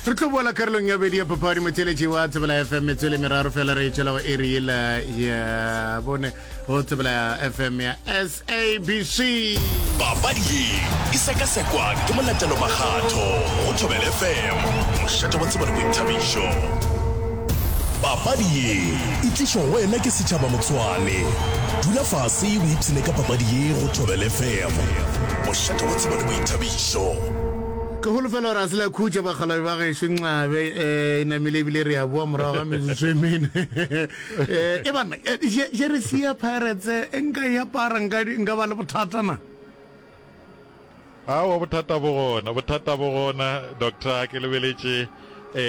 re tlo boela karolong ya bedi ya papadi motheletši wa tsebela fm metswele meraro fela re etšela go eri yela ya bone go tsebela fm ya sabc papadi ye e sekasekwa ke molatelo makgatho go thobel fm mošate wa tsebele boithabišo papadi ye e tlišo go wena ke setšhaba motswane dula fase o ipshine ka papadi ye go thobel fm mošate wa tsebele boithabišo Sure. Ke holofela gore a se la khutša bakgalabje ba gešo nxabe e namile ebile re a boa morago ga metsotso e mene. E banna, jersey ya Pirates e nka e apara nka ba le bothata na? Aowa bothata bo gona, bothata bo gona Doctor, ke lebeletše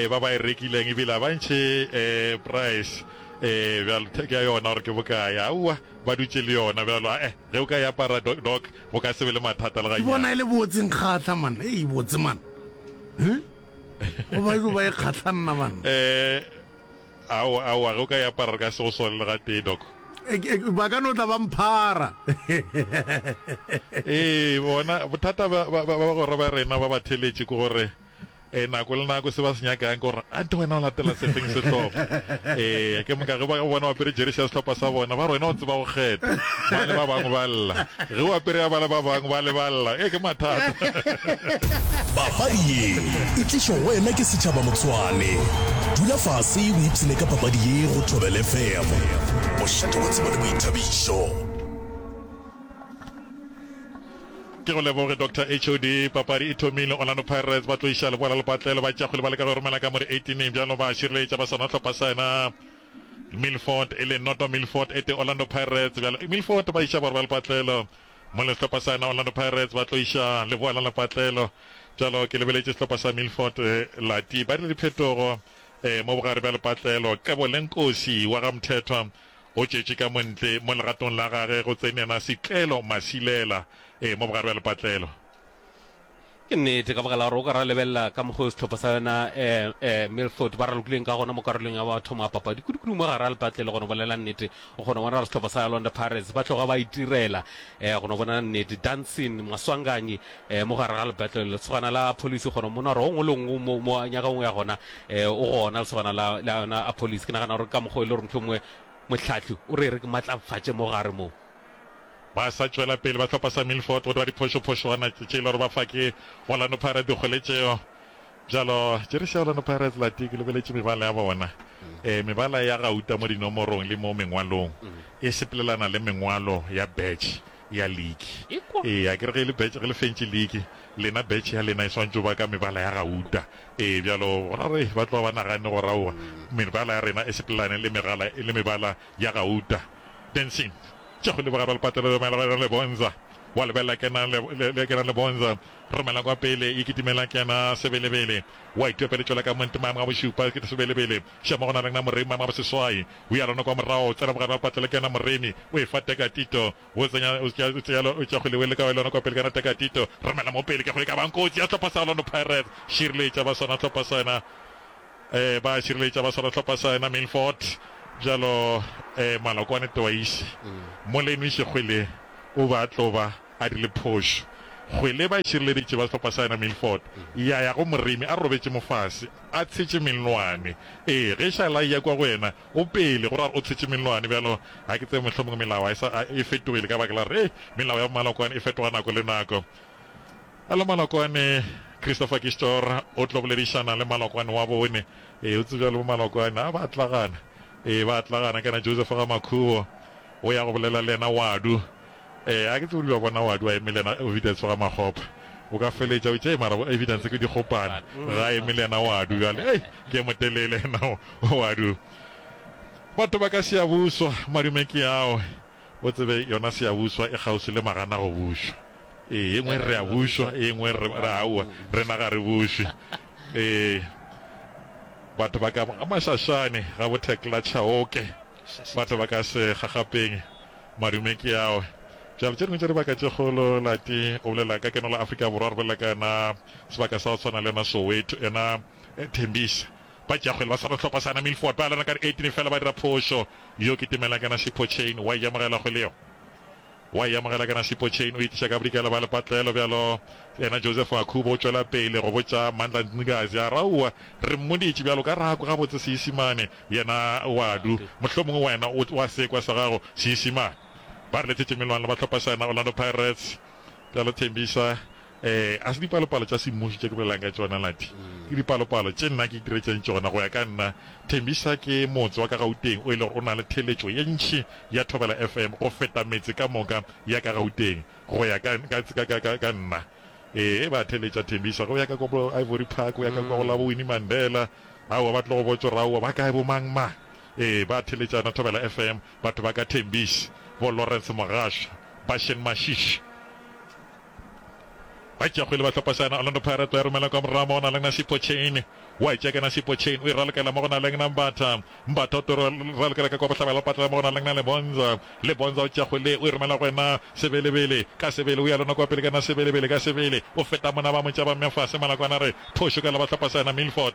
ba ba e rekileng ebile a ba ntšhe price bjalo ke a yona gore ke bokae, aowa ba dutše le yona bjalo, ae ge o ka e apara Doc Go ka se be le mathata le gannyane. Ke bona e le botse nkgahla man. Ei botse man. Huh? Go ba ilo ba e kgahla nna man. Eh, ao, ao, a ge o ka e apara re ka se go swale le ga tee, Doc. Eh, eh, ba ka no tla ba mphara. Ee, bona, bothata ba, ba, ba, ba gore ba rena ba ba theletše ke gore Ee, nako le nako se ba se nyakang ke gore ante wena o latela sefeng sehlopha. Ee, ke moka ge ba bona o apere jeresi ya sehlopha sa bona, ba re wena o tseba go kgetha. Ba le ba bangwe ba lla. Ge o apere ya ba le ba bangwe ba le ba lla. Ee, ke mathata. Papadi ye e tlišwa go wena ke Setšhaba Motsoane. Dula fase o ipshine ka papadi ye go Thobela FM. Bošate bo tseba le boithabišo. Ke go leboge Doctor HOD. Papadi e thomile, Orlando Pirates ba tlo iša leboa la lepatlelo, ba tšea kgwele ba leka go e romela ka mo di 18-ing bjalo ba šireletša ba sona hlopha sa yena Milford e le noto Milford e tee Orlando Pirates bjalo Milford ba iša borwa lepatlelo mo le hlopha sa yena Orlando Pirates ba tlo iša leboa la lepatlelo bjalo ke lebeletše sehlopha sa Milford eh, lati ba dire diphetogo eh, mo bogare bja lepatlelo Qebo le Nkosi wa ga Mthethwa O tšetše ka mo ntle mo legatong la gage go tsenela setlelo masilela, ee, mo bogare bja lepatlelo. Ke nnete, ka baka la gore o ka ra lebelela ka mokgwa o sehlopha sa yona Milford ba ralokileng ka gona mo karolong ya bathomo ya papadi kudu-kudu mo gare ga lepatlelo. Go no bolela nnete, o kgona go bona gore sehlopha sa Orlando Pirates ba tloga ba itirela. Go no bona nnete, Dansin Maswanganyi e, mo gare ga lebetlele, lesogana la Apolisi, gona mo nora o ngwe le ngwe mo, mo nyaka ngwe ya gona, e, o gona lesogana la, la yona Apolisi. Ke nagana gore ka mokgwa e le gore motho mongwe mohlahli o re re ke matlafatše mo gare moo. Ba sa tšwela pele, ba hlopha sa Milford go dwa diphošophošwana tše e le gore ba fa ke Orlando Pirates dikgole tšeo. Bjalo, jeresi ya Orlando Pirates la tee ke lebeletše mebala ya bona, e, mebala ya gauta mo dinomorong le mo mengwalong, e sepelelana le mengwalo ya badge ya liki. Ee, a ke re ge e le betš, ge le fentše liki, lena betš ya lena e swantše go ba ka mebala ya gauta. Ee, bjalo gona re ba tloga ba naganne gore aowa, mebala ya rena e sepelelane le megala, le mebala ya gauta. Dancing. Tša go leboga Ralpatelo le Mela Rena Lebonza. Wa lebelela kena le, le, le kena Lebonza. Re mela kwa pele, e kitimela kena Sebelebele. Wa itopele tšwela ka Montemang wa bošupa, ke Sebelebele. Še mo go na leng na moremi mama boseswai o ya lona kwa morago tsena bogare ga patlele ke yena moremi o e fa teka tito o tsenya o tšea o tšea o tšea go lewele ka wa lona kwa pele kana teka tito romela mo pele ke go e ka bang kotsi ya tlhopa sa Orlando Pirates šireletša ba swana tlhopa sa yena eh ba šireletša ba swana tlhopa sa yena Milford bjalo eh malokwane twice molemi šegwele o ba tloba a dirile phošo. Kgwele ba e šireleditše ba sehlopha sa yena Milford ya ya go Moremi a robetše mofase a tshetše mellwane. Ee, ge Shalai ya kwa go yena, o pele, go ra gore o tshetše mellwane. Bjalo, ga ke tsebe, mohlomongwe melao a e sa, a e fetogile ka baka la gore, hei, melao ya bomalokwane e fetoga nako le nako. Bjalo malokwane, Christopher Kishtor o tlo boledišana le malokwane wa bone. Ee, o tsebja le bomalokwane a ba atlagana. Ee, ba atlagana kana. Joseph Gamakhubo o ya go bolela le yena Wadu. Ee, a ke tsebe o di ba bona, wa di wa emile na evidence ga makgopa, o ka feletša o tšee mara bo evidence ke dikgopane, ga emile na wa di bjale hei ke motelele na wa di. Batho ba ka Siyabuswa, madume ke ao, o tsebe yona Siyabuswa e kgauswi le magana go bušwa, ee e ngwe re a bušwa e ngwe re re aowa rena ga re bušwe, ee batho ba ka ga Mashashane ga bo Thekla Chauke. Batho ba ka se gagapeng madume ke awe. Bjalo, tše dingwe tša dibaka tše kgolo, Lati o bolela ka keno la Afrika Borwa, re bolela ka yona sebaka sa go tshwana le yona Soweto, yona Tembisa. Ba Jakgwele ba swara sehlopha sa yona Milford, ba lona ka di 18 fela, ba dira phošo. Yo ke Timela, ke yena Sipho Chain, wa e ja mogela kgwele yeo. Wa e amogela kana Sipho Chain o itiša ka bodikela ba lepatlelo bjalo. Yena Joseph Akhubo o tšwela pele go botša Mandla Ncikazi a re, Aowa, re mmoditše bjalo ka rako gabotse Seisimane. Yena o a du. Mohlomongwe wena o wa sekwa sa gago Seisimane. Ba re lethetše Melwane ba hlopha sa yona Orlando Pirates bjalo Thembisa. Ee, ga se dipalopalo tša semmuši tše ke bolelago ka tšona, Nathi. Ke dipalopalo tše nna ke itiretšeng tšona. Go ya ka nna, Thembisa ke motse wa ka Gauteng o e lego o na le theeletšo ye ntši ya Thobela FM go feta metse ka moka ya ka Gauteng. Go ya ka, ka, ka, ka, ka, ka nna. Ee, ba a theeletša Thembisa. Go ya ka kwa bo Ivory Park, go ya ka kwa go la bo Winnie Mandela, aowa, ba tlo go botša gore aowa, ba kae bo mang mang. Ee, ba a theeletšana Thobela FM, batho ba ka Thembisa, bo Lawrence Mogashoa, Bashen Mashishi. Batšeakgwele ba tlhopasana, Orlando Pirates ba e romela kwa morago mo go na leng Nasipho Chain, wa e tšea ke Nasipho Chain, o e ralokela mo go na leng Nambatha, Mbatha o toro e ralokela ka kwa bohlabela o patlela mo go na leng Lebonza, Lebonza o tšea kgwele o e romela go wena Sebelebele, ka Sebele o ya lona kwa pele ka na Sebelebele, ka Sebele o feta mona ba mo tšaba mme fase Malakwana a re phošo ka la ba tlhopasana, Milford.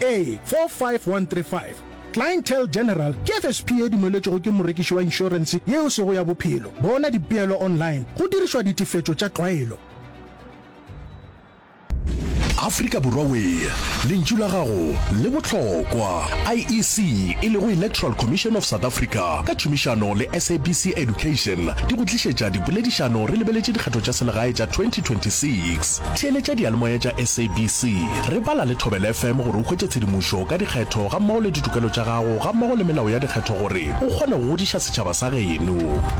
A45135 Clientele General ke FSP e dumeletšwego ke morekiši wa inšorense yeo sego ya bophelo. Bona dipeelo online go dirišwa ditefetšo tša tlwaelo. Afrika Borwa Wee, lentšu la gago le bohlokwa! IEC, e lego Electoral Commission of South Africa, ka tšhomišano le SABC Education di go tlišetša dipoledišano re lebeletše dikgetho tša selegae tša 2026. Theeletša diyalemoya tša SABC. Re bala le Thobela FM gore o hwetše tshedimošo ka dikgetho gammogo le ditokelo tša gago gammogo le melao ya dikgetho gore o kgone go godiša setšhaba sa geno.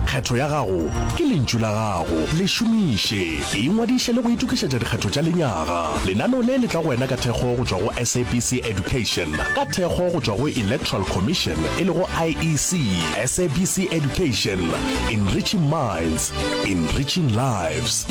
Kgetho ya gago ke lentšu la gago. Le šomiše. Ingwadiše le go itokišetša dikgetho tša lenyaga. Lenaneo le le tla go wena ka thekgo go tšwa go SABC Education, ka thekgo go tšwa go Electoral Commission e lego IEC. SABC Education, enriching minds, enriching lives.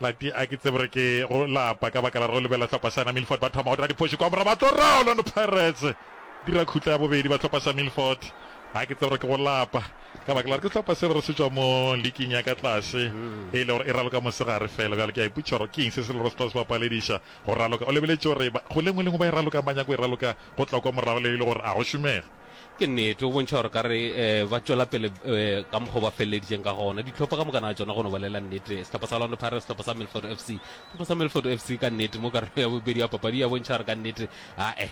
lati a ke tsebe gore ke go lapa ka baka la re lebela tlhopha sana milford ba thoma go dira diphoši kwa mora ba tlo ra orlando pirates dira khutla ya bobedi ba tlhopha sa milford a ke tsebe gore ke go lapa ka baka la re ke tlhopha se re se tswa mo leking ya ka tlase mm. e le gore e raloka mosegare fela bjale ke a iputša gore ke eng se se le gore se tla se bapalediša go raloka o lebeletse gore go lengwe lengwe ba e raloka manyako e raloka go tla kwa morago le e le gore a go šomege. Ke nnete, go bontšha gore ka re ba tšwela pele ka mokgwa o ba feleleditšeng ka gona. Dihlopha ka moka na tšona go no bolela nnete, sehlopha sa Orlando Pirates, sehlopha sa Milford FC. Sehlopha sa Milford FC ka nnete mo karolong ya bobedi ya papadi ya bontšha gore ka nnete ae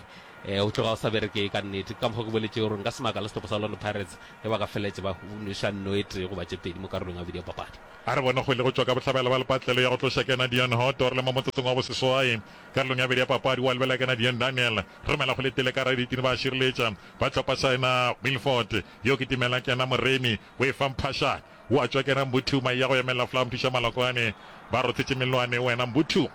o tloga o sa berekee ka nnete. Ka mokgwa ke boletše gore nka se makale sehlopha sa Orlando Pirates ge ba ka feleletše ba nweša nno e tee goba tše pedi mo karolong ya bobedi ya papadi. A re bone kgwele go tšwa ka bohlabela ba lepatlelo ya go tloša Kennedy Onhoto re le mo motsotsong wa boseswai. Karolong ya bobedi ya papadi wa lebelela ke na Dion Daniel, Remela go letile ka gare ditini ba šireletša ba tlhopa sa ena Wilford, yo ke timela ke ena Moremi o e fa Mphashane, o a tšwa ke ena Mbuthu, mai ya go emelela Flower Mthuša Malokwane ba rothetše mellwane o ena Mbuthu.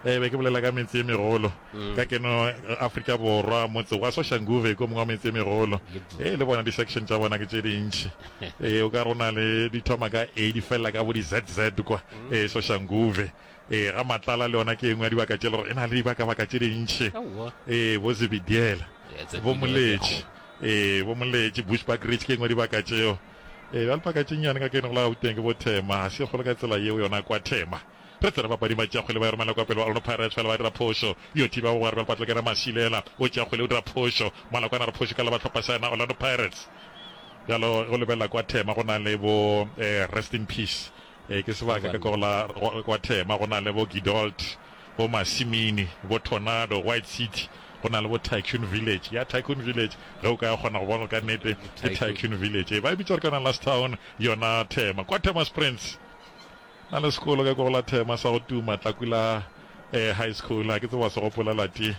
Ee, be ke bolela ka metse e megolo ka keno Afrika Borwa, motse wa Soshanguve ke o mongwe wa metse e megolo, ee, le bona di-section tša bona ke tše dintši, ee, o ka re o na le di thoma ka A di felela ka bo di-ZZ kwa, ee, Soshanguve, Ee, ga Matlala le yona ke e nngwe ya dibaka tše le gore e na le dibaka-baka tše dintši. Ee, bo Zebidiela, bo Moletši, ee, bo Moletši, Bushbuck Ridge ke e nngwe ya dibaka tšeo. Ee, bjale paka tše nnyane ka kene go la Gauteng ke bo Thema, ga se e kgolo ka tsela yeo yona kwa Thema. Re tsere bapading ba Tšeakgwele ba e romela kwa pele, ba Orlando Pirates fela ba dira phošo. Yo thiba bogwera bjale Patleke Ramasilela o Tšeakgwele o dira phošo. Malakwane a re phošo ka la ba hlopha sa yena Orlando Pirates. Bjalo ge o lebelela kwa Thema go na le bo Rest in Peace Ee, ke sebaka ka go la kwa Thema, go na le bo Gidolt, bo Masimini, bo Tornado, White City, go na le bo Tycoon Village. Ya Tycoon Village, ge o ka kgona go bona ka nnete, ke Tycoon Village. Ee, ba e bitsa ka Last Town, yona Thema. Kwa Thema Springs, na le sekolo ka go la Thema sa go tuma, Tlakula eh, High School. Ha ke tseba se gopola lati,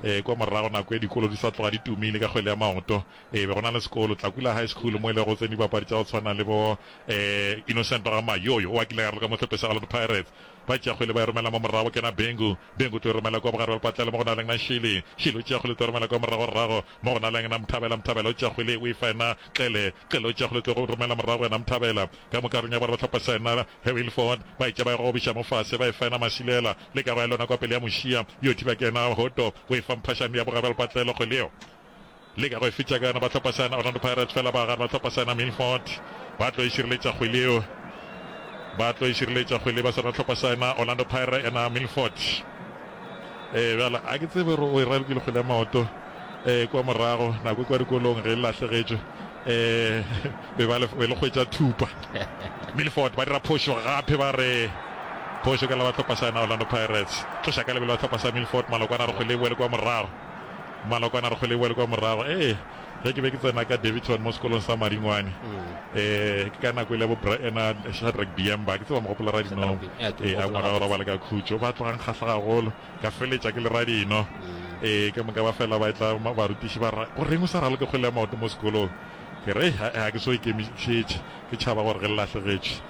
eh, kwa morago nako e dikolo di sa tloga di tumile ka kgwele ya maoto. Ee, be go na le sekolo, Tlakula High School, mo e lego go tsene dibapadi tša go tshwana le bo eh, Innocent Ramayo, yo yo o a kile ya raloka mo hlopheng sa Orlando Pirates. Ba tšea kgwele ba e romela mo morago, go kena Bengu. Bengu o tlo e romela kwa bogare bja lepatlelo mo go na leng na Shili. Shili o tšea kgwele o tlo e romela kwa moragorago mo go na leng na Mthabela. Mthabela o tšea kgwele o e fa yena Xele. Xele o tšea kgwele o tlo go romela morago go yena Mthabela. Ka moka reng ya boraro hlopha sa yena Hewilford ba e tšea ba e gogobiša mo fase ba e fa yena Masilela. Le kago ya lona kwa pele ya Mošia yo thiba ke yena Hoto, o e fa Mphashane ya bogare bja lepatlelo kgwele yeo. Leka go e fetša kana ba hlopha sana Orlando Pirates fela ba gare ba hlopha sana Milford ba tlo e šireletša kgwele yeo ba tlo e šireletša kgwele ba sana hlopha sana Orlando Pirates ena Milford eh bjala a ke tsebe gore o e ralokile kgwele ya maoto eh kwa morago nako e kwa dikolong ge e lahlegetšwe eh be ba le be le kgwetša thupa Milford ba dira phošo gape ba re phošo ka la ba hlopha sana Orlando Pirates tloša ka lebelo ba hlopha sa Milford malokwana re kgwele e boele kwa morago Malokwane a re kgole e boele kwa morago. Ee, ge ke be ke tsena ka Daveyton mo sekolong sa Maringwane, ee, ke ka nako e le ya bo Bra Ena Shadrack Diemba, ke tseba mogopolo ra dino, ee, a ngwana wa robala ka khutšo, ba tloga nkgahla gagolo, ka feletša ke le ra dino, ee, ke moka ba fela ba etla barutiši ba ra, go reng o sa raloke kgole ya maoto mo sekolong? Ke re, ee, ga ke so ikemišetše, ke tšhaba gore ge le lahlegetšwe,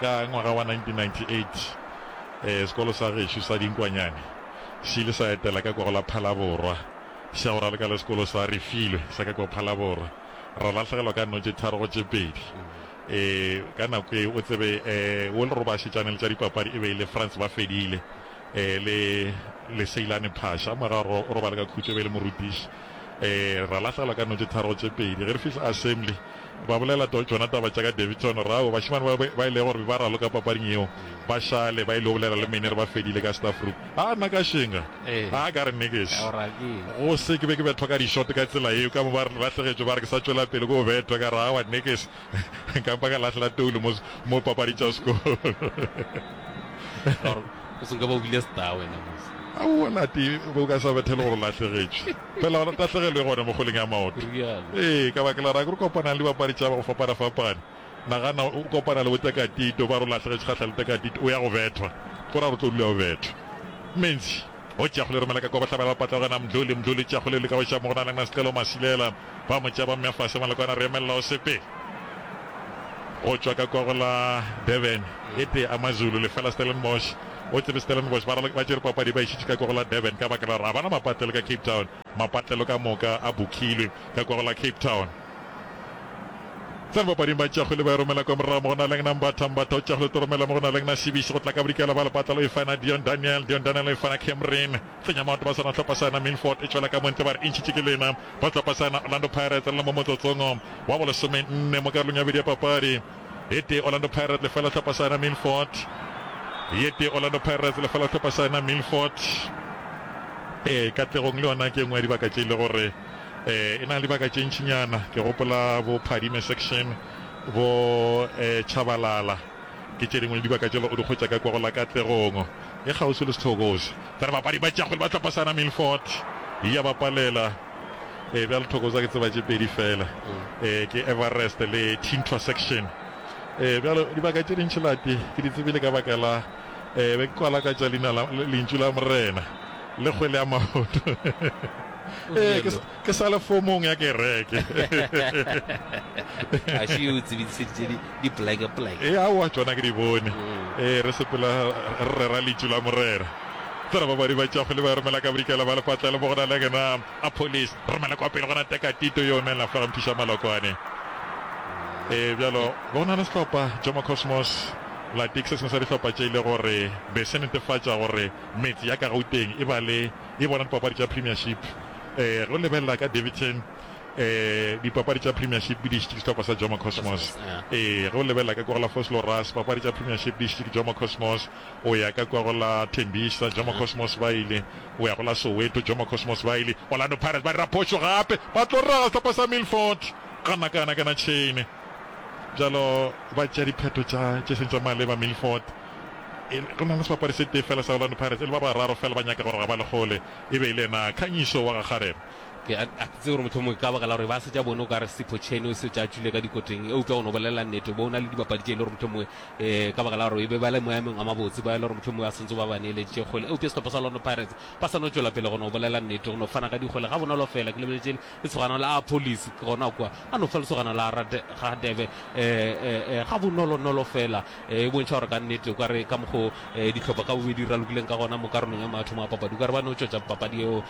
Ka ngwaga wa 1998, sekolo sa gešo sa Dinkwanyane se ile sa etela ka kwago la Phalaborwa, sa go raleka le sekolo sa Refilwe sa ka kwa Phalaborwa. Ra lahlegelwa ka nno tše tharo go tše pedi. Ka nako eo, o tsebe, wo le robašetšane le tša dipapadi e be e le Frans Bafedile le Leseilane Phasha. Mora o robale ka khutšo, e be e le morutiši. Ra lahlegelwa ka nno tše tharo go tše pedi. Ge re fihla assembly, Ba bolela tšona taba tša ka Daveyton Rawo. Bašemane ba ba ilego gore ba raloka papading yeo ba šale ba ilego bolela le mene re ba fedile ka staff room. A nna ka šenga. A ka re nix. Go se ke be ke betlwa ka di-shot ka tsela yeo. Ka mo ba lahlegetšwe ba re ke sa tšwela pele ke go betwa. Ka re aowa nix. Ka mpa ka lahlela toulu mo mo papadi tša sekolo. Aowa Lati, bo ka sa bethe le gore o lahlegetšwe. Fela gona tahlegelo e gona mo kgoleng ya maoto. Ee, ka baka la rage re kopanang le dibapadi tša ba go fapana-fapana. Nagana o kopana le bo Tekatito, ba re o lahlegetše kgahla le Tekatito, o ya go bethwa. Go ra gore o tlo dula o bethwa. Menzi, O tšea kgole, romela ka kwa, ba hlabela ba patlagana, Mdluli, Mdluli o tšea kgole, leka go šaba mo go na le Ngnasicelo, Masilela, ba mo tšea ba mmea fase, Malokwane re emelela o sepele. Go tšwa ka kwa go la Durban, e tee AmaZulu, lefela Stellenbosch. O tsebe Stellenbosch ba ba tšere papadi ba e šitše ka kwagolo la Durban ka baka la gore ga ba na mapatlelo ka Cape Town. Mapatlelo ka moka a bukilwe ka kwagolo la Cape Town. Tsena papading ba tšeago le ba e romela kwa morago mo go na leng na Mbatha. Mbatha o tšeago le Toromela mo go na leng na Sebiši go tla ka bodikela ba lepatlelo e fana Dion Daniel. Dion Daniel e fana Cameron Tsenyamaoto ba swana hlopha sa yona Milford e tšwela ka mo ntle ba re e ntšhitše ke lena ba hlopha sa yona Orlando Pirates le le mo motsotsong wa bolesomenne mo karolong ya bobedi ya papadi. Ye tee Orlando Pirates lefela hlopha sa yona Milford Ye tee Orlando Pirates lefela hlopha sa yona Milford Ee Katlegong le yona ke engwe ya dibaka tše e le gore eh e na le dibaka tše ntšinyana ke gopola bo Phadime section bo eh Tshabalala ke tše dingwe le dibaka tše le o di hwetša ka kwa go la Katlegong e kgauswi le Sithokozi. Tsa re bapadi ba tša kgwele ba hlopha sa yona Milford ya ba palela. Ee, bjalo thoko tsa ke tseba tše pedi fela, ee, ke Everest le Tintoa Section. Ee, bjalo dibaka tše dintši lati ke di tsebile ka baka la, ee, be ke kwa lakatša leina la Lentšu la Morena le kgwele ya maoto. Ee, ke, ke sa le fomong ya kereke. A še o tsebidiseditše di, di pleke pleke. Ee, aowa, tšona ke di bone. Ee, re sepela re rera Lentšu la Morena. Tsena ba badi ba tšago le ba romela ka bodikela ba lepatlelo mo go na le gena a police. Romela kwa pele go na teka tito yo nela fela mphiša malokwane. E bjalo go na le sehlopha Jomo Cosmos Latic se sengwe sa dihlopha tše ile gore be se netefatša gore metse ya ka Gauteng e ba le e bona dipapadi tša Premiership. E ge o lebelela ka Daveyton e dipapadi tša Premiership di dišitše ke sehlopha sa Jomo Cosmos. E ge o lebelela ka Kogelafoss Loras papadi tša Premiership di dišitše ke Jomo Cosmos. o ya ka kwa go la Tembisa, Jomo Cosmos Bailey, o ya go la Soweto, Jomo Cosmos Bailey, Orlando Pirates ba dira phošo gape, ba tlo raga sehlopha sa Milford, ga nna ka yona kana tšhene. Bjalo ba tšea diphetho tša tše seng tša maleba Milford. E, go na le sebapadi se tee fela sa Orlando Pirates, e le ba bararo fela ba nyaka gore ga ba le gole, e be e le yena Khanyiso wa ga Kgarebe. Ke a, a ke tsebe gore mohlomongwe ka baka la gore ba se tša bone o ka re Sipho Cheni o se tša tšwile ka dikoteng, eupša o no bolelela nnete, bo o na le dibapadi tše e le gore mohlomongwe Ee, ka baka la gore e be ba le moemong a mabotse, ba e le gore mohlomongwe ba santse ba ba neeleditše kgwele. Eupša sehlopha sa Orlando Pirates ba sa no tšwela pele go no bolela nnete, go no fana ka dikgwele gabonolo feela. Ke lebeletše lesogana la Apolis, ke gona kwa a no fa lesogana la Radebe gabonolonolo feela, e bontšha gore ka nnete o ka re ka mokgwa o dihlopha ka bobedi di ralokileng ka gona mo karolong ya mathomo a papadi, o ka re ba no tšwetša papadi yeo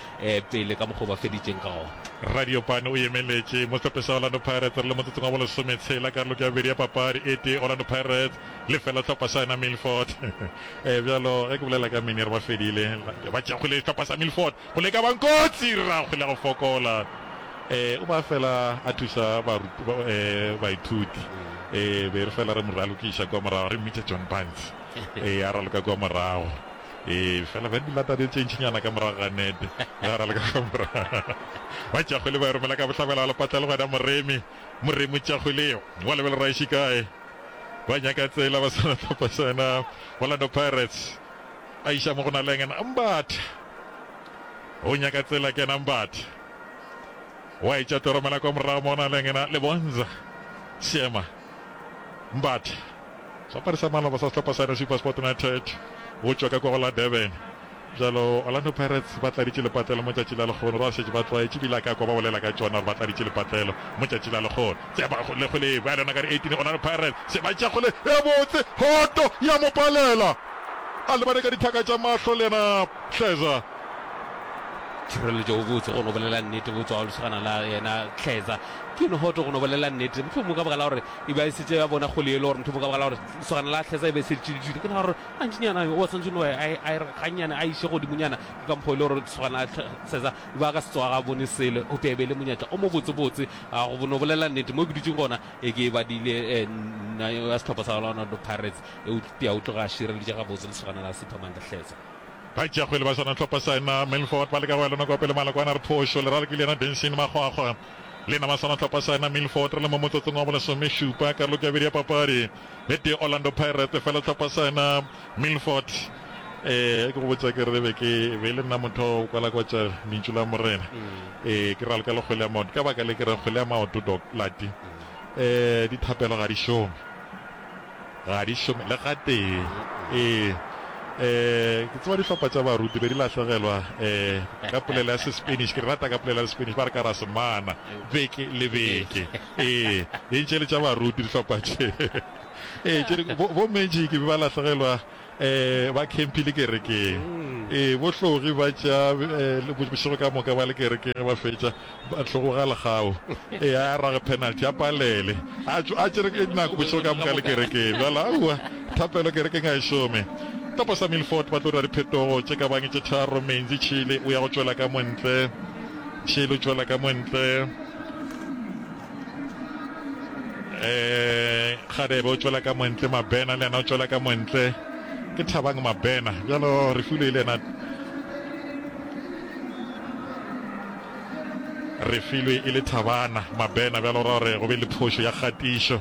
pele ka mokgwa o ba feditšeng ka gona. Radiopane o emeletše mo sehlophe sa Orlando Pirates re le motsotsong wa bolesome tshela karolong ya bobedi ya papadi e tee Orlando Pirates lefela sehlopha sa yona Milford. E, bjalo ge ke bolela ka Minier ba fedile ba tšakgile sehlopha sa Milford go leka ba nkotsi rragwe le go fokola e, o ba fela a thusa e, baithuti e be re fela re mo ralokiša kwa morago re mmitša John Barnes e a raloka kwa morago. Ee, fela ba di lata di tše ntšinyana ka morago ga nete. Ba ra le ka fa morago. Ba tšakgwele ba e romela ka bohlabela wa lepatla le gona moremi. Moremi o tšakgweleo. Wa lebela ra ešo kae. Ba nyaka tsela ba swana tlhopha sa yona Orlando Pirates. A iša mo go na le yena Ambatha. O nyaka tsela ke yena Ambatha. Wa e tša tlo romela kwa morago mo na le yena Lebonza. Seema. Mbatha, seapari sa maloba sa sehlopha sa SuperSport United, o tšwa ka kwa go la Durban. Bjalo Orlando Pirates ba tladitše lepatlelo mo tšatši la lekgono, ba šetše ba tlwaetše ebile a ka kwa ba bolela ka tšona gore ba tladitše lepatlelo mo tšatši la lekgono. Tseba go le go le bjale yona ka di 18 Orlando Pirates se ba tša go le e botse, hoto ya mo palela a lebane ka dithaka tša mahlo le yena Kleza. Tšhireletšo o botse go no bolela nnete, botswa wa lesogana la yena Kleza. Ke nohoto go no bolela nnete, mohlomongwe ka baka la gore e be a šetše a bona kgole yelo, gore mohlomongwe ka baka la gore lesogana la Hlesa e be e se le tšiditšwile. Ke nagana gore gantšinyana o swantšwe no a e, a e re gannyane, a e iše godimonyana ka mokgwa o e le gore lesogana la Hlesa e be a ka se tsoga ga bone selo. Eupša e be e le monyetla o mobotsebotse wa go no bolela nnete. Mo ke dutšego gona e ke e badile, nna wa sehlopha sa Orlando Pirates, eupša o tloga a šireleditše gabotse lesogana la Siphamandla Hlesa. Baitšeakgwele ba Sona Tlhopha Saena Milford ba leka go ya le nokopele maloko a na re phošo, lerale ke le yena Benson Makgwakgwa. Le nama Sona Tlhopha Saena Milford re le mo motsotsong wa bolesomešupa karolong ya bobedi ya papadi le tee Orlando Pirates fela Tlhopha Saena Milford. Ee, ge ke go botša ke re be ke be le nna motho wa go kwalakwatša lentšu la Morena. Ee, ke ralka le kgwele ya maoto. Ka baka le ke re kgwele ya maoto, Doc Lati, ee, dithapelo ga di šome. Ga di šome le gatee. Ee, e, ke tseba dihlopha tša baruti be di lahlegelwa e, ka polelo ya Sespanish. Ke di rata ka polelo ya Sespanish, ba re ka ra semana, beke le beke. Ee, di ntše le tša baruti dihlopha tše. Ee, tše dingwe bo, bo magic be ba lahlegelwa Ba khemphile kerekeng. Ee, bo hlogi ba tša bošego ka moka ba le kerekeng ge ba fetša, ba hlogo ga legao. Ee, a arage penalty, a palele, a tšwa a tšere nako bošego ka moka a le kerekeng. Bjale, aowa, thapelo kerekeng ga e šome. Topo sa Milford ba tlo dira diphetogo tše ka bang tše tharo, Menzi, Chile o ya go tšwela ka mo ntle, Chile o tšwela ka mo ntle, eh gadebe o tšwela ka montle mabena le yena o tšwela ka montle ke thabang mabena bjalo re fule le yena re filwe e le thabana mabena bjalo ra gore go be le phošo ya kgatišo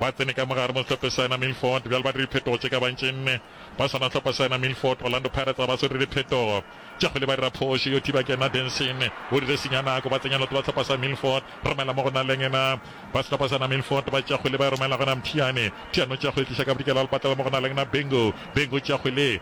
Ba tsene ka mo gare mo sehlophe sa yena Milford bjale ba dira diphetogo tše ka bantši nne ba swana sehlopha sa yena Milford. Orlando Pirates ga ba so dire diphetogo tše kgole ba dira phošo yo thiba ke yena Denson o dire senya nako ba tsenya lotho ba sehlopha sa Milford romela mo go na leng yena ba sehlopha sa yena Milford ba tšea kgole ba e romela gona Mthiane Mthiane o tšea kgole tliša ka bodikela lepatlela mo go na leng yena Bengu Bengu o tšea kgole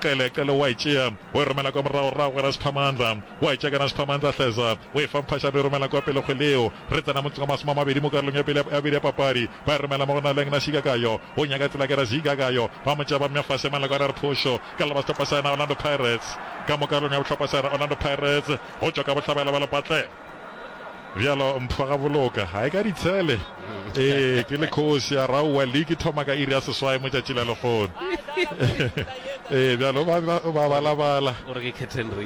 Qele, Qele wa e tšea, o e romela kwa morago, rrago ga Rasiphamandla. Wa e tšea ka Rasiphamandla, Hleza, o e fa Mphasha, re e romela kwa pele kgweleo. Re tsena motseng wa masome a mabedi mo karolong ya pele ya bobedi ya papadi. Ba e romela mo go Naleng na Shigakayo, o nyaka tsela ke Razigakayo. Ba mo tšea ba mmea fase, Malakwane a re phošo ka leba sehlopha sa yena Orlando Pirates. Ka mo karolong ya bohlopha sa yena Orlando Pirates, go tšwa ka bohlabela ba Lepatleng. bjalo mpho ga boloka ga e ka ditshele ee ke le kgosi ya raua leke thoma ka iri ya seswae mo tšatši la legono ee bjalo ba balabala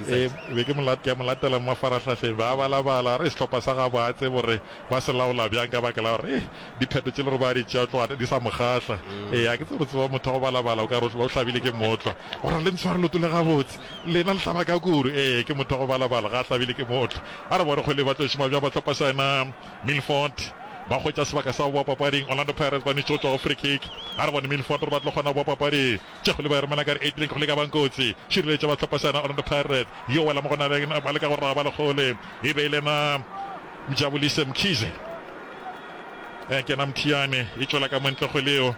ee, be ke molatela mo mafarahlahleng ba balabala re sehlopha sa gabo a tsebo re ba se laola bjang ka baka la gore eh, Dipheto tše le gore ba di tšea tlo ata di sa mo kgahla. Ee, a ke tsebe re tseba motho wa go balabala o ka re o hlabile ke mootlwa. O ra le ntshware leoto le gabotse. Lena le hlaba ka kuru. Ee, ke motho wa go balabala, ga a hlabile ke mootlwa. A re bone kgole ba tlo šoma bjang bahlopasana. Milford ba hwetša sebaka sa go boa papading. Orlando Pirates ba nwetše go tšwa go free kick. A re bone Milford gore ba tlo kgona go boa papadi. Tše kgole ba e romela ka re Adrian kgole e ka bang kotsi. Šireletša bahlopasana Orlando Pirates. Yo wela mo go na le yena ba leka go raba le kgole e be e lena Mjabulise Mkhize ya kena Mthiane, e tšwela ka montle go Leo,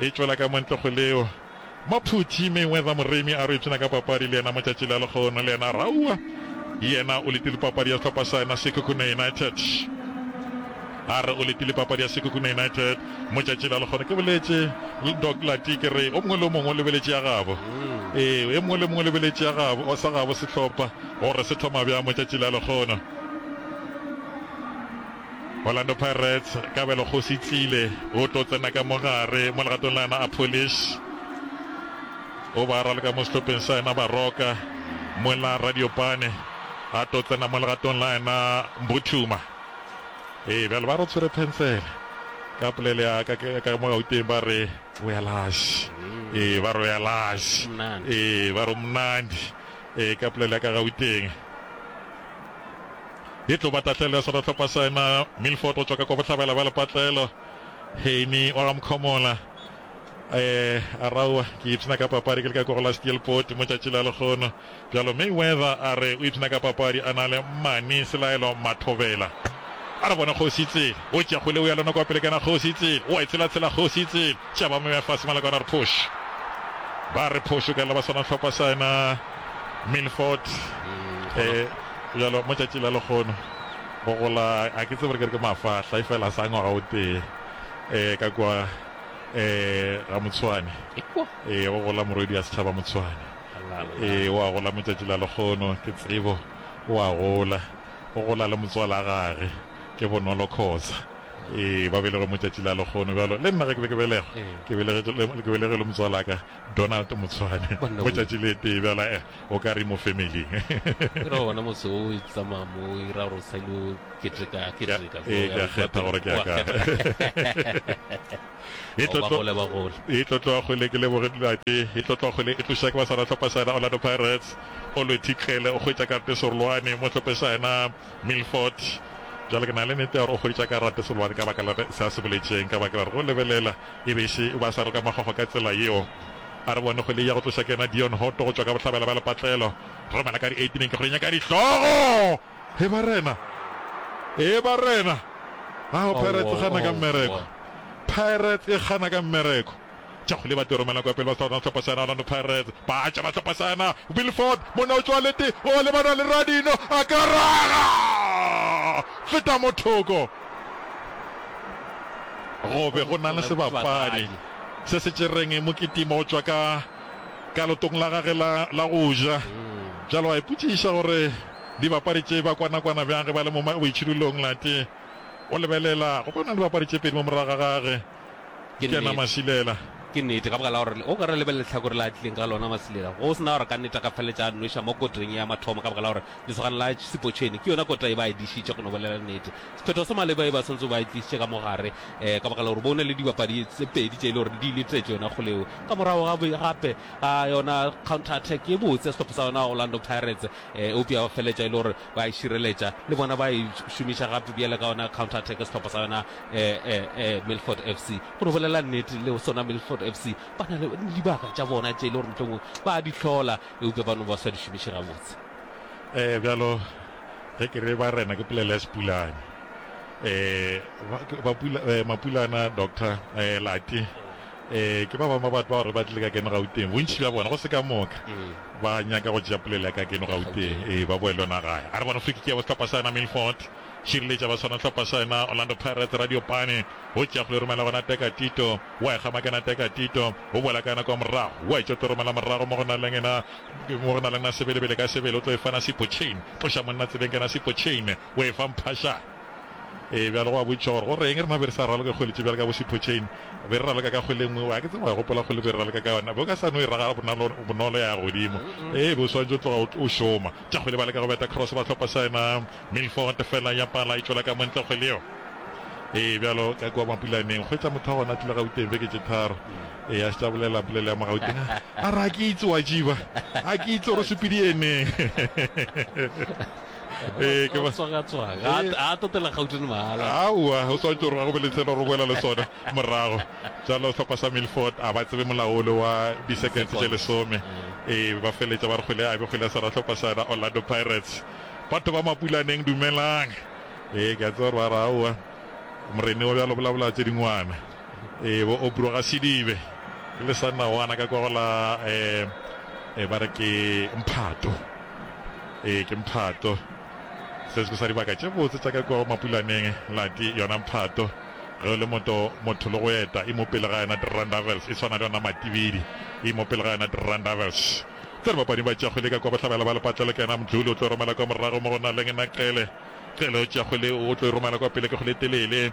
e tšwela ka montle go Leo. Maphuthi Mayweather Moremi a re o ipshina ka papadi le yena motšatši la lekgono le yena Raua yena o letile papadi ya sehlopha sa yena Sekhukhune United a re o letile papadi ya Sekhukhune United motšatši la lekgono ke boletše Doc Lati ke re o mongwe le o mongwe o lebeletše ya gabo ee e mongwe le mongwe o lebeletše ya gabo sa gabo sehlopha gore se thoma bjang motšatši la lekgono Orlando Pirates, Kabelo Kgosi Tlile o tlo tsena ka mogare mo legatong la yena a Polish o ba raloka mo sehlopheng sa yena Baroka mo la Radiopane a tlo tsena mo legatong la yena Mbuthuma ee bjale ba re tshwere pencele ka polele ya ka ka mo gauteng ba re o ya lash ee ba re o ya lash ee ba re o mnandi Ee, ka polelo ya ka Gauteng e tlo ba tahlelo ya seratlhopha sa ema Milford go tšwa ka kwa bohlabela bja lepatlelo. Heine wa ga Mkhomola eh a raua ke ipshina ka papadi ke le ka ko go la steelport mo tšatši la lekgono bjalo mayweather a re o ipshina ka papadi a na le mane selaelo mathobela a re bone kgosi tsele o tšegole o ya lona kwa pele kana kgosi tsele o a e tsela tsela kgosi tsele Tša ba moya fase Malakwana re phoš Ba re phoš o ka lla ba swana hlokwa sa ena Milford Bjalo mo tšatši la lekgono go gola a ke tsebe re ke re ke mafahla e fela sa ngwaga o tee eh ka kwa eh ga Motshwane eh go gola morwedi ya setšhaba Motshwane eh wa gola mo tšatši la lekgono ke tsebo wa gola go gola le motswala gage ke bonolo khoza Ee, ba belegwe mo tšatši la lekgono bjalo. Le nna ge ke be ke belegwa, ke belegetše le, ke belegelwe motswalaka Donald Motshwane Banna mo wee. tšatši le tee bjalo. Eh, o ka re mo family-ing. Ke ra gona motse wo o tsamaya mo o ira gore o sa ile o keteka, keteka. Ee, ke a kgetha gore ke ya Wa kae. kgetha. E tlo Ba tlo- gole, ba gole. e tlo tloga kgole ke leboge dilate e tlo tloga kgole e tloša ke basara tlhopha saena orlando pirates o lwethitlele o kgwetša karete serolwane mo tlhophe saena Milford, Bjale ke na le nete ya gore o hweditša karate sebobane ka baka la se a se boletšeng, ka baka la gore go lebelela e be e še ba sa roka mahogo ka tsela yeo. A re bone kgwele ya go tloša ke yena Dion Hotto go tšwa ka bohlabela bja lepatlelo. Romela ka di eighteen ke kgwele nyaka dihlogo! He barena! He barena! Ao, Pirates e gana ka mmereko! Pirates e gana ka mmereko! Chakguli ba tlo romela kwa pele ba Southern sehlopha sena Orlando Pirates. Baatša ba sehlopha sena Will Ford monna o tšoa lete o lebana le Radinho a ka raga feta mo thoko go be go na le sebapadi se se tšereng Mokitima go tšwa ka ka lotong la gage la la go ja bjale wa ipotšiša gore dibapadi tše ba kwana kwana bjang ge ba le mo boitšhidulong late o lebelela go bona dibapadi tše pedi mo morago ga gage Ke kena nnete. Masilela. Ke nnete, ka baka la gore o ka re lebelele lehlakore la a tlileng ka lona Masilela. Go se na gore ka nnete a ka feletša a nweša mo koteng ye ya mathomo ka baka la gore lesogana la Sepotšheni ke yona kota e ba e dišitše go no bolela nnete. Sephetho se maleba e ba swantse ba e tlišitše ka mo gare um ka baka la gore bo na le dibapadi tse pedi tše e le gore di letetše yona kgole eo. Ka morago ga gape ga yona counter attack ye botse ya sehlopha sa yona Orlando Pirates um eupša ya ba feletša e le gore ba e šireletša le bona ba e šomiša gape bjale ka yona counter attack sehlopha sa yona eh, eh, eh, milford f c go no bolela nnete le sona milford f c ba na le dibaka tša bona tše e le gore mohlomong ba di hlola eupša ba no ba sa di šomiše gabotse um bjalo ge ke re ba rena ke polela ya sepulane um mapulana doctor um late Ee, ke ba bangwe ba batho bao re ba tlile ka keno Gauteng. Bontši bja bona, go se ka moka, ba nyaka go tšea polelo ya ka keno Gauteng, ee, ba boe le yona gae. A re bona Flick ke ya bo sehlopha sa yena Milford, Shirley tša ba swana sehlopha sa yena Orlando Pirates, Radio Pane, go tšea kgole romela go Nateka Tito, wa e kgama ke Nateka Tito, o boela ka yona kwa morago, wa e tšea o tlo romela morago mo go na leng ena, mo go na leng na Sebelebele ka sebele, o tlo e fa Nasipo Chain, tloša monna tsebeng ke Nasipo Chain, O e fa mphašana. Ee, bjale gwa botšišwa gore go re'ng rena be re sa raloke kgole tše bjalo ka bo Siphocheni. Be re raloka ka kgole e nngwe. Wa ke tseba, wa gopola kgole be re raloka ka yona? Be o ka sa no e ragala bonalo, bonolo ya godimo. Ee, be o swanetše o tloga o, o šoma. Tša kgole ba leka go beta cross, ba hlopa sa yena Milford, feela ya pala e tšwela ka mo ntle kgole yeo. Ee, bjalo ka kua Mapulaneng. Hwetša motho wa gona a tlile Gauteng beke tše tharo. Ee, a šetše a bolela polelo ya mo Gauteng, a, a re, A ke itse, wa tšiba, a ke itse gore o sepediyeneng. ee ke tswagatswaga ga totela gautone mahala aowa o swantse gore ga go be le tsela gore o boela le sone morago jalo tlhopha sa milford a ba tsebe molaole wa di-seconds tse lesome ee ba feletsa ba re kgwele a be kgwele ya sara tlhopha sa yona orlando pirates batho ba mapulaneng dumelang ee ke a tseba gore ba re aowa morene wa bjalo bolabola tse dingwana Ee, bo Obro ga se dibe. Ke le sa nna wana ka kwa go la eh, ba re ke mphato. Ee, ke mphato. Se se sa dibaka tše botse tša ka kwa go mapulaneng lati yona mphato. Ge o le moto motho le go eta e mo pele ga yona Drandavels e tshwana le yona matibidi e mo pele ga yona Drandavels. Tse re bapadi ba tšago le ka kwa bohlabela ba lepatlelo ke yena Mdluli o tlo romela kwa morago mo go na leng na Qele. Qele o tšago le o tlo romela kwa pele ke go le telele.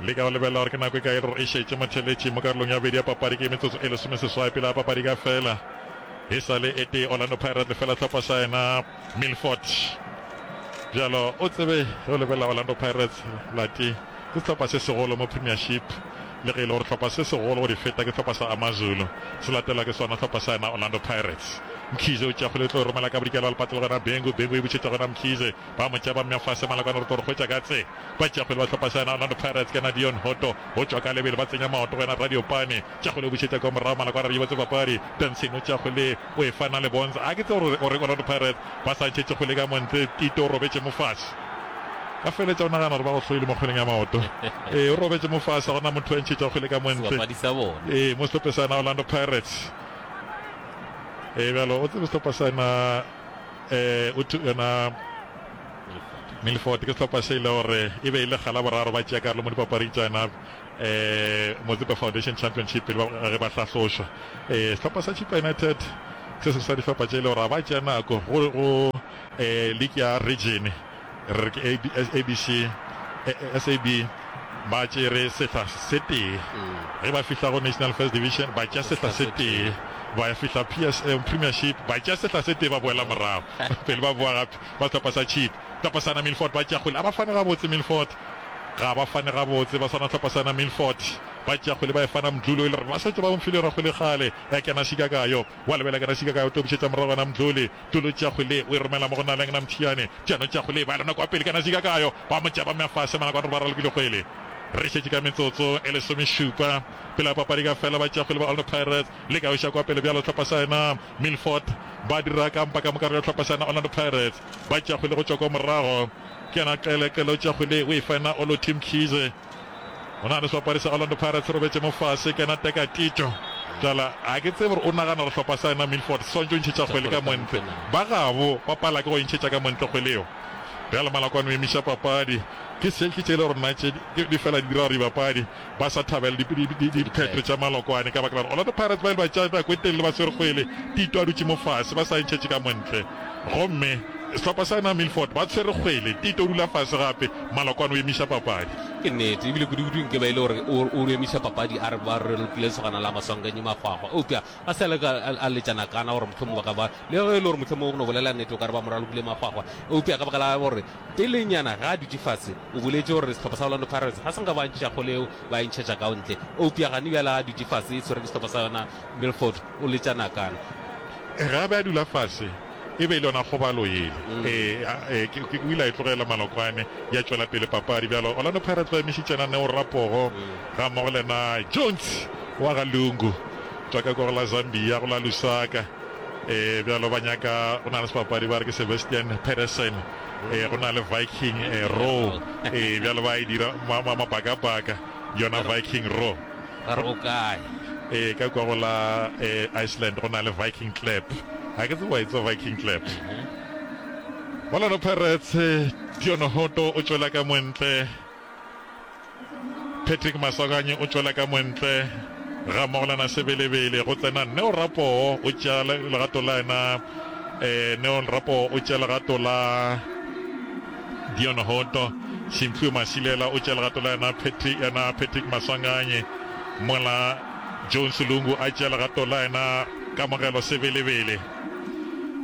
Le ka go lebelela gore ke nako e kae gore e šetše motheeletši mo karolong ya bobedi ya papadi, ke metsotso e lesomeseswai pele ga papadi e ka fela. E sa le e tee Orlando Pirates lefela tlhopha sa yena Milford. Bjalo o tsebe ge o lebelela Orlando Pirates lati ke sehlopha se segolo mo Premiership le ge e le gore sehlopha se segolo go di feta ke sehlopha sa Amazulu se latelwa ke sona sehlopha sa yena Orlando Pirates. Mkhize o tšea kgwele e tlo e romela ka bodikela wa lepato le go yena Bengu, Bengu e butšhetša go yena Mkhize. Ba mo tšea ba mmea fase. Malakane o re tlo re hwetša ka tse. Ba tšea kgwele ba hlopa sa yena Orlando Pirates ke yena Dion Hotto. Go tšwa ka lebelo ba tsenya maoto go yena Radio Pane. Tšea kgwele o bušetša kwa morago Malakane a re yobotse papadi. Benson o tšea kgwele o e fa Nale Bonza. A ke tsebe gore o reng Orlando Pirates ba sa ntšhetše kgwele ka mo ntle Tito o robetše mo fase. Ka feletša o nagana gore ba go hloile mo kgweleng ya maoto. Ee o robetše mo fase ga gona motho a ntšhetša kgwele ka mo ntle. Sebapadi sa bona. Ee mo sehlope sa yena Orlando Pirates. Ee bjalo o tsebe sehlopa sa yena. eh, o tu, yona Milford ke sehlopha se e le gore e be e le gala boraro ba tšea karolo mo dipapading tša yona eh, Mozambique Foundation Championship pele ba- ge ba hlahlošwa eh, sehlopha sa Chipa United se se sa dihlopha tše e le gore ga ba tšea nako go, go eh, league ya region re re ke ABC, SAB, ba tšere sehla se tee. Ge ba fihla go National First Division, ba tša sehla se tee. Ba ya fihla PSL, Premiership, ba tša sehla se tee, ba boela morago. Pele ba boa gape, ba sehlopha sa Cheap. Sehlopha sana Milford ba tša kgwele, a ba fane gabotse Milford. Ga ba fane gabotse, ba swana sehlopha sana Milford. Ba tša kgwele, ba e fana Mdluli, o ile a re ba šetše ba mfile yona kgwele kgale, ya kena šika ka yo. Wa lebela ke rašika ka o tlo bušetša morago wena Mdluli. Mdluli o tšea kgwele ye o e romela mo go Naleng na Mthiyane. Mthiyane o tšea kgwele ye ba lona kwa pele ka rašika ka yo ba mo tšea ba mmea fase Malakwane gore ba ralokile kgwele. Re šetše ka metsotso e lesomešupa pele ga papadi ka fela ba tšea kgwele ba Orlando Pirates. Le ka o iša kwa pele bjalo hlopha sa yena Milford ba dira kampa ka mo karolo ya hlopha sa yena Orlando Pirates. Ba tšea kgwele go tšwa kwa morago ke yena Qele. Qele o tšea kgwele ye o e fa yena Olothi Mkhize. Go na le sehlopha sa Orlando Pirates se robetše mo fase, ke yena Teka Tito. Bjala ga ke tsebe gore o nagana gore sehlopha sa yena Milford se swanetše go ntšhetša kgwele ka montle. Ba gabo ba pala ke go e ntšhetša ka montle kgwele yeo. Bjale Malakwane o emiša papadi. Ke selki tše le gore nna tše di fela di dira gore dibapadi ba sa thabela diphetho tša Malokwane ka baka la gore Orlando Pirates ba ile ba tšea nako e telele ba swere kgwele, Tito a dutše mo fase, ba sa e ntšhetše ka montle. Gomme sehlopha sa yena Milford ba tshwere kgwele, Tito o dula fase gape. Malokwane o emiša papadi. Ke nnete, ebile kudu-kudu nke ba e le gore o, o emiša papadi a re ba re lokile lesogana la Maswanganyi Magwagwa. Eupša a sa leka a, a letša nakana gore mohlomong ba ka ba, le ge e le gore mohlomong no bolela nnete o ka re ba mo ralokile Magwagwa. Eupša ka baka la gore pelenyana ge a dutše fase o boletše gore sehlopha sa Orlando Pirates ga se nka ba ntšha kgole eo ba e ntšhetša ka ntle. Eupša gane bjale a dutše fase e tshwere ke sehlopha sa yona Milford o letša nakana. Ge a be a dula fase, E be e le yona kgobalo yele. Eya, ee, ke, ke, o ile a e tlogela Malokwane, ya tšwela pele papadi. Bjalo Orlando Pirates ba emišitše na Neo Rapogo gammogo le na Jones wa ga Lungu. Tšwa ka kwa go la Zambia, go la Lusaka. Ee, bjalo ba nyaka, go na le sebapadi ba re ke Sebastian Pedersen, ee, go na le Viking, ee, Roe. Ee, bjalo ba e dira ma, ma, mabakabaka, yona Viking Roe. Ba re o kae? Ee, ka kwa go la Iceland go na le Viking Club. Ga ke tsebe wa e tseba Viking Club. Orlando Pirates, Dion Hoto o tšwela ka montle. Patrick Masoganye o tšwela ka montle. Ga Mogolana Sebelebele go tsena Neo Rapoo o tšea legato la ena. Neo Rapoo o tšea legato la Dion Hoto, Simphiwe Masilela o tšea legato la yena, Patrick yena Patrick Maswanganyi, mola Jones Lungu a tšea legato la yena, Kamogelo Sebelebele.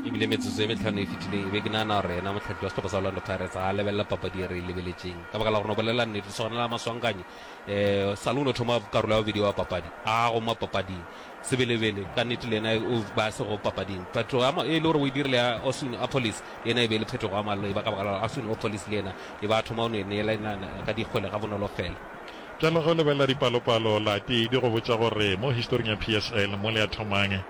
e bile metsotso e metlhano e fetileng e be ke nagana gore yena motlhatlhi wa setlhopha sa orlando pirates ga a lebelela papadi e re e lebeletseng ka baka la gore no bolelela nnete sogana la maswankanyi um eh, salo o ne thoma karolo ya bobedi wa papadi a goma papading Sebelebele, ka nnete le yena o ba a sego papading. Phetogo ya e le gore o e dirile ya Osun Opolis le yena e be e le phetogo ya maleba, ka baka la gore Osun Opolis le yena e ba a thoma go no e neelana ka dikgwele gabonolo fela. Bjale ge o lebelela dipalopalo, la tee di go botša gore mo historing ya PSL mo le a thomang um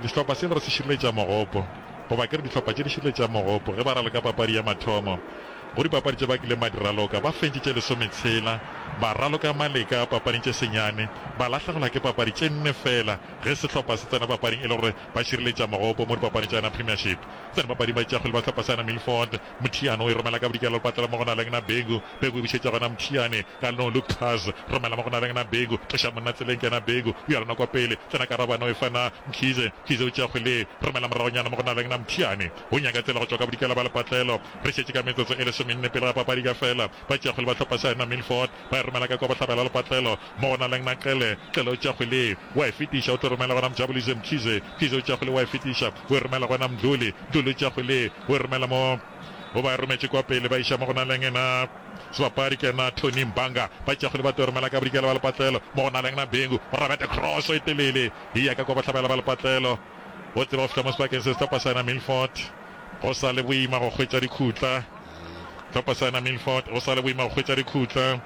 sehlopha se e le gore se šireletša mogopo, goba ke re dihlopha tše di šireletšang mogopo ge ba raloka papadi ya mathomo. Go dipapadi tše ba kileng ba di raloka, ba fentšitše lesometshela, ba raloka maleka papading tše senyane, ba lahlegelwa ke papadi tše nne feela ge sehlopha se tsena papading e le gore ba šireletša mogopo mo dipapading tša yona Premiership. Tsena papading ba tšeakgwele ba sehlopha sa yona Milford, Muthiane o e romela ka bodikela lepatlela mo go na lengna Bhengu, Bhengu e bušetša gona Muthiane ka leno Luke Cars, romela mo go na lengna Bhengu, tloša monna tseleng ke yena Bhengu, o ya lona kwa pele, tsena Karabane o e fa na Mkhize, Mkhize o tšeakgwele, romela moragonyana mo go na lengna Muthiane, o nyaka tsela go tšwa ka bodikela ba lepatlelo. Re šetše ka metsotso e lesomenne pele ga papadi ka fela. Ba tšeakgwele ba hlopha sa Henna Milford ba e romela ka kwa bohlabela lepatlelo mo go na leng Naqele. Qele o tšeakgwele wa e fetiša o tlo romela gona Mjabulise Mkhize. Mkhize o tšeakgwele wa e fetiša o e romela gona Mdluli. Mdluli o tšeakgwele o e romela mo o ba e rometše kwa pele ba iša mo go na leng ena sebapadi ke ena Tony Mbanga. Ba tšeakgwele ba tlo e romela ka bodikela ba lepatlelo mo go na leng Nabengu. O rabete cross e telele e ya ka kwa bohlabela ba lepatlelo o tseba go fihla mo sebakeng se sehlopha sa Henna Milford. Go sa le boima go hwetša dikhutla. Tlhopasana Milford, Go sa le boima go hwetša dikhutla.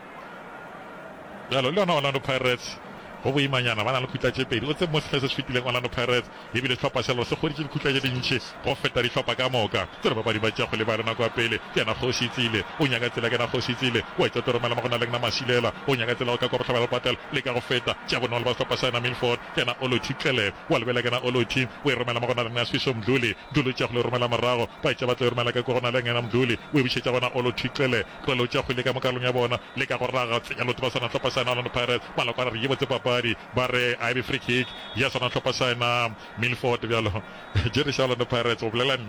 Bjalo, le yona Orlando Pirates go boimanyana, ba na le khutla tše pedi. O tsebe, mo sehleng se se fetileng Orlando Pirates e bile sehlopha se lego se hweditše dikhutla tše dintši go feta dihlopha ka moka. Tsere bapadi ba tša go lebale nako ya pele ke yena Kgoši Tsile. O nyaka tsela ke yena Kgoši Tsile. O etša Toromela mo go na le Gna Masilela. O nyaka tsela go ka kwa bohlabela le go patela le ka go feta tša bonolo ba sehlopha sa yena Milford. Kena Ology Tlele wa lebela Kena Ology o e romela mo go na le nna Swisho Mdluli Mdluli o tša go le romela morago Ba etša ba tlo e romela ka ko go na le ngena Mdluli o e bušetša gona Ology Tlele Tlele o tša go leka mo kalong ya bona leka go raga tsenya loto ba swana hlopha sa yena Orlando Pirates Maloko a re re ye botse papadi ba re a e be free kick ya swana hlopha sa yena Milford bjalo Jerry sa Orlando Pirates o bolela nnete.